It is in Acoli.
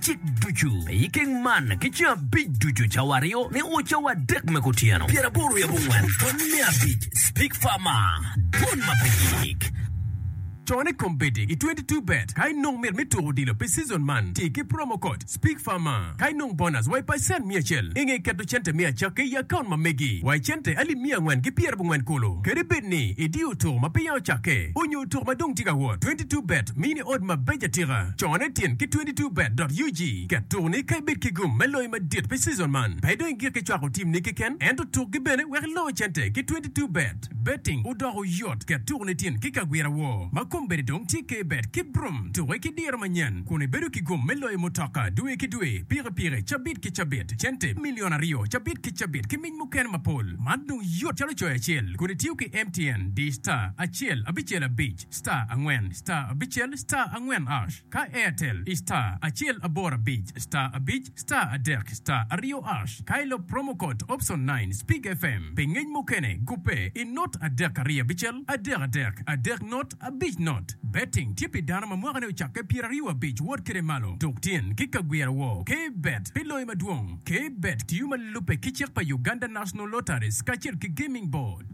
cik ducu me i keng man ki ceng abic ducu, cawa aryo me o, cawa adek me kutyeno, pyeraboro i abongwen pwony me abic, Speak Farmer, Dwon ma pe yik. Con i kom bedi i 22 bet ka inong mit me tuko odilo pi season man, ti ki promo code, Speak Farmer, ka inong bonus wa i pacent miya acel inge keto cente me acakke i account ma megi wa i cente alip miya angwen ki pyerabongwen kulu. Kadi bed ni idiyo tuko ma peya ocakke onyo tuko ma dong tye ka wot, 22 bet mini odd mabeco atika. Con i tyen ki 22 Bet.ug, ket tuku ni ka ibed ki gum me loyo madit pi cizon man, pe idong igik ki cwako timni keken ento tukgi bene wek iloo cente ki 22 Bet. Betting odoko yot, ket tuku ni tyen ki kagwira wor ma kombeddi dong tye ke bet ki brum tuki ki diro manyen kun ibedo ki gum me loyo mutoka dwe ki dwe, pikipiki cabit ki cabit, cente milion aryo cabit ki cabit ki mic mukene mapol. Man dong yot calo coyo acel kun itiyo ki MTN, dish star acel abicel abic. star angwen star abicel star angwen ash ka airtel i star acel aboro abic star abic star adek star aryo ash ka ilop promo code option nine speak fm pi ngec mukene gubbe i not adek aryo abicel adek adek adek not abic not betting tye pi dano ma mwakane ocakke pyeraryo abic wot kede malo tuk tyen ki ka gwira wor ke bet pi loyo madwong ke bet tiyo ma lubbe ki cik pa Uganda National Lotteries kacel ki Gaming Board.